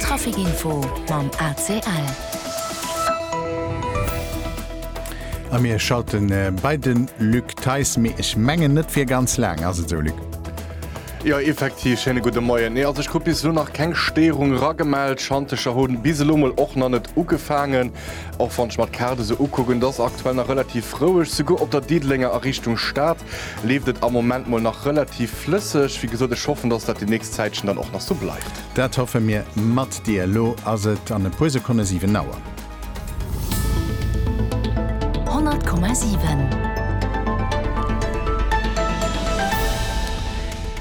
Trafic Info mam ACL. A mir schalte bei de Luc Theis, mee ech mengen net fir ganz laang, ass et esou Luc? Jo effektiv, schéine gudde Moien. Nee also ech krut bis elo nach keng Stéierung ragemellt. Schantecher hunn bis elo mol och nach net ugefaangen. Och wann ech mer d'Kaart esou ukucken, et ass aktuell nach relativ roueg. Souguer op der Diddelenger a Richtung Stad leeft et am Moment mol nach relativ flësseg. Wéi gesot, ech hoffen, dass dat déi nächst Zäitchen dann och nach sou bleift. Dat hoffe mir mat dir. Elo ass et an e puer Sekonne 7 Auer. 100,7.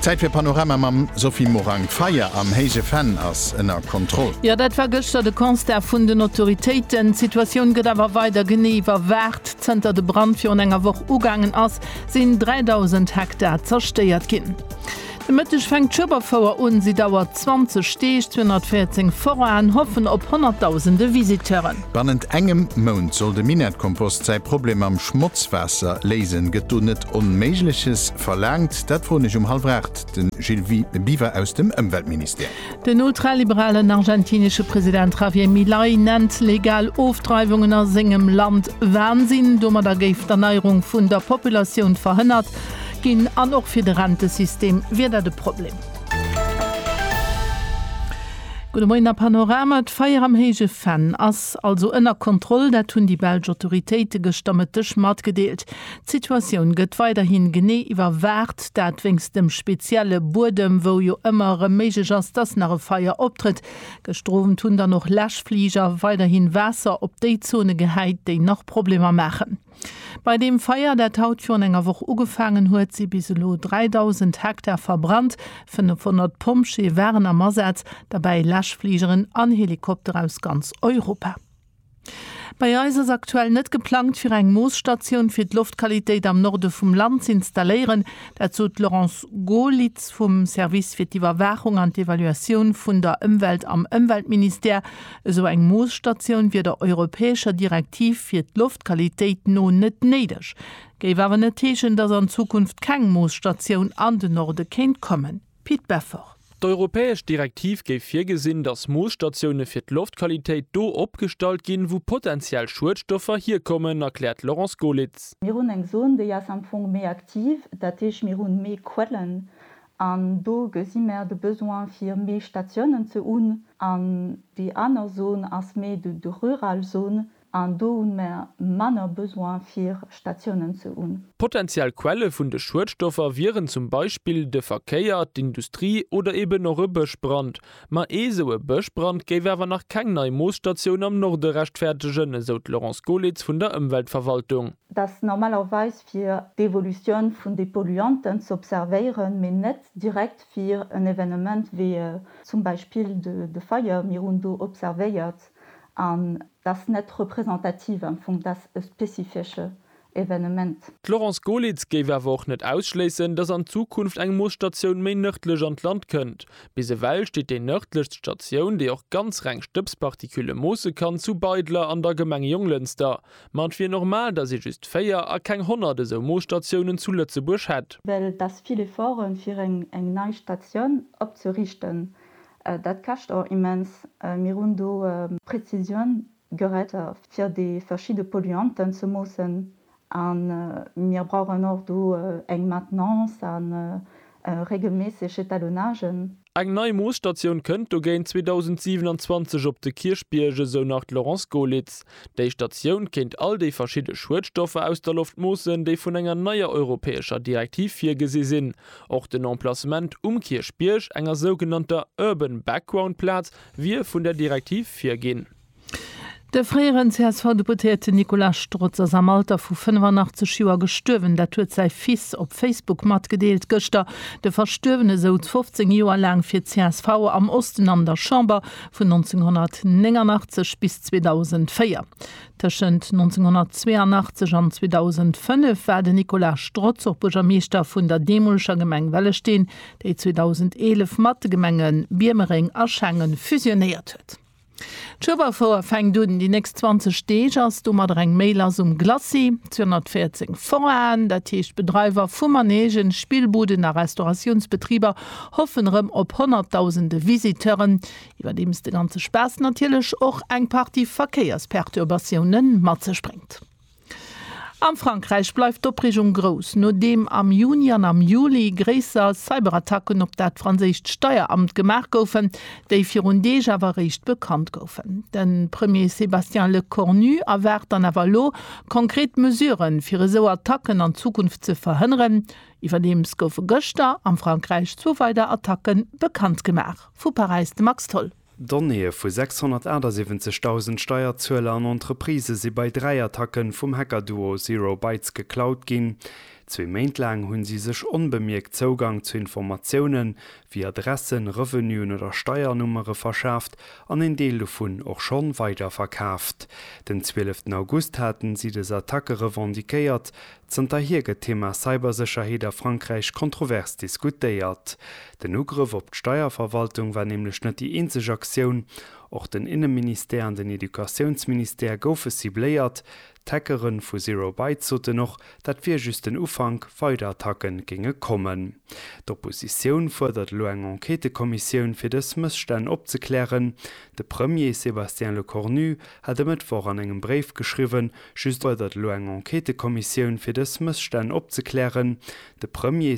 Zäit fir Panorama mam Sophie Morang. D'Feier am Héije Venn ass ënner Kontroll. Jo, dat war gëschter de Constat vun den Autoritéiten. D'Situatioun gëtt awer weider genee iwwerwaacht. Zënter de Brand virun enger Woch ugaangen ass, sinn 3.000 Hektar zerstéiert ginn. De Mëtteg fänkt d'Schueberfouer un. Si dauert 20 Deeg. 214 Foraen hoffen op honnertdausende Visiteuren. Bannent engem Mount soll de Minettkompost säi Problem mam Schmotzwaasser léisen. Gëtt do net Onméigleches verlaangt? Dat froen ech um hallwer 8 de Gilles Biwer aus dem Ëmweltministère. Den ultraliberalen argentinesche President Javier Milei nennt legal Ofdreiwungen a sengem Land Wansinn. Domadder géif d'Erneierung vun der Populatioun verhënnert ginn an och fir de Rentesystem wier dat e Problem. Gudde Moien a Panorama, D'Feier am Héije Venn ass also ënner Kontroll. Dat hunn déi belsch Autoritéite gëschter Mëtteg matgedeelt. D'Situatioun gëtt weiderhin genee iwwerwaacht, dat wéinst dem spezielle Buedem, wou jo ëmmer erëm méiglech ass, dass nach e Feier optrëtt. Gëschter Owend hunn dann och Läschfliger weiderhin Waasser op déi Zone gehäit, déi nach Problemer maachen. Bei deem Feier, dat haut virun enger Woch ugefaangen huet, si bis elo 3.000 Hektar verbrannt. 500 Pompjee waren am Asaz, derbäi Läschfligeren an Helikopter aus ganz Europa. Bei eis ass aktuell net geplangt, fir eng Moosstatioun fir d'Loftqualitéit am Norde vum Land z'installéieren. Dat sot d'Laurence Goerlitz vum Service fir d'Iwwerwaachung an d'Evaluatioun vun der Ëmwelt am Ëmweltministère. Esou eng Moosstatioun wier der europäescher Direktiv fir d'Loftqualitéit no net néideg. Géif awer net heeschen, dass an Zukunft keng Moosstatioun an den Norde kéint kommen. Pit Beffort. D'europäesch Direktiv géif virgesinn, datt Moosstatioune fir d'Loftqualitéit do opgestallt ginn, wou potenziell Schuedstoffer hierkommen, erkläert d'Laurence Golitz. Mir hunn eng Zon, déi ass am Fong méi aktiv, dat heescht mir hunn méi Quellen an do gesi mer de Besoin fir méi Statiounen ze hunn. An déi aner Zon ass méi de rural Zon, An do hunn mer manner Besoin fir Statiounen ze hunn. Potentiell Quelle vun de Schuedstoffer wieren zum Beispill de Verkéier, d'Industrie oder eben och e Bëschbrand. Ma ee esou e Bëschbrand géif awer nach keng nei Moosstatioun am Norde rechtfäertegen, esou d'Laurence Golitz vun der Ëmweltverwaltung. Dass normalerweis fir d'Evolutioun vun de Polluanten z'observéieren, mee net direkt fir en Evenement wéi zum Beispill de Feier. Mir hunn do observéiert, an d'ass net représentativ am Fong, d'ass e spezifesche Evenement. D'Laurence Golitz géif awer och net ausschléissen, datt an Zukunft eng Moosstatioun méi nërdlech an d'Land kënnt. Bis ewell steet déi nërdlechst Statioun, déi och ganz reng Stëbspartikülle moosse kann, zu Beidler an der Gemeng Jonglënster. Ma et wier normal, datt ee just 4 a keng 100 esou Moosstatiounen zu Lëtzebuerg hätt. Well et ass vill Efforte fir eng nei Statioun opzerichten, Dat käscht och immens. Mir hunn do Präzisioun-Geräter, fir déi verschidde Polluanten ze moossen. A mir brauchen och do eng Maintenance a regelméisseg Etalonagen. Eng nei Moosstatioun kënnt dogéint 2027 op de Kierchbierg, esou nach d'Laurence Goelitz. Déi Statioun kéint all déi verschidde Schuedstoffer aus der Loft moossen, déi vun enger neier europäescher Direktiv virgesi sinn, Och den Emplacement um Kierchbierg, enger sougenannter Urban Background Plaz, wier vun der Direktiv virginn. De fréieren CSV-Deputéierten Nicolas Strotz ass am Alter vu 85 Joer gestuerwen. Dat huet säi Fils op Facebook matgedeelt gëschter. De Verstuerwene souz 15 Joer laang fir csv am Osten an der Chamber, vun 1989 bis 2004. Tëschent 1982 an 2005 war den Nicolas Strotz och Buergermeeschter vun der deemoleger Gemeng Wellesteen, déi 2011 mat de Gemenge Biermereng a Schengen fusionéiert huet. D'Schueberfouer fänkt un. Déi nächst 20 Deeg ass domadder eng méi lass um Glacis. 214 Foraen, dat heescht Bedreiwer vu Manegen, Spillbuden a Restauratiounsbetriber, hoffen erëm op Honnertdausende Visiteuren. Iwwerdeems de ganze Spaass natierlech och eng Partie Verkéiersperturbatioune mat sech bréngt. Am Frankräich bleift d'Opreegung grouss, nodeem am Juni an am Juli gréisser Cyberattacken op dat franséischt Steieramt gemaach goufen, déi virun Deeg awer eréischt bekannt goufen. De Premier Sébastien Lecornu erwaart dann awer elo konkret Mesurë fir esou Attacken an Zukunft ze verhënneren. Iwwerdeems goufe gëschter am Frankräich zwou weider Attacke bekannt gemaach. Vu Paräis de Max Tholl. Donnéeë vu 678.000 Steierzueler an Entreprisë si bei dräi Attacke vum Hacker-Duo Zero Bytes geklaut ginn. Zwee Méint laang hu si sech onbemierkt Zougang zu Informatioune wéi Adressen, Revenuen oder Steiernummere verschaaft an een Deel dovun och scho weiderverkaaft. Den 12 August hate si des Attacke revendiquéiert, Zënterhier gëtt d'Thema Cybersécherheet a Frankräich kontrovers diskutéiert. Den Ugrëff op d'Steierverwaltung war nämlech net déi eenzeg Aktioun. Och den Inneministère an den Educatiounsministère goufe cibléiert. D'Hackere vu Zero Bytes soten och, dat wier just den Ufank, weider Attacke géinge kommen. D'Oppositioun fuerdert elo eng Enquêtëkommissioun, fir dës Mësstänn opzeklären. De Premier Sébastien Lecornu hat e Mëttwoch an engem Bréif geschriwwen, Just fuerdert elo eng Enquêtëkommissioun fir dës Mësstänn opzeklären. De Premier,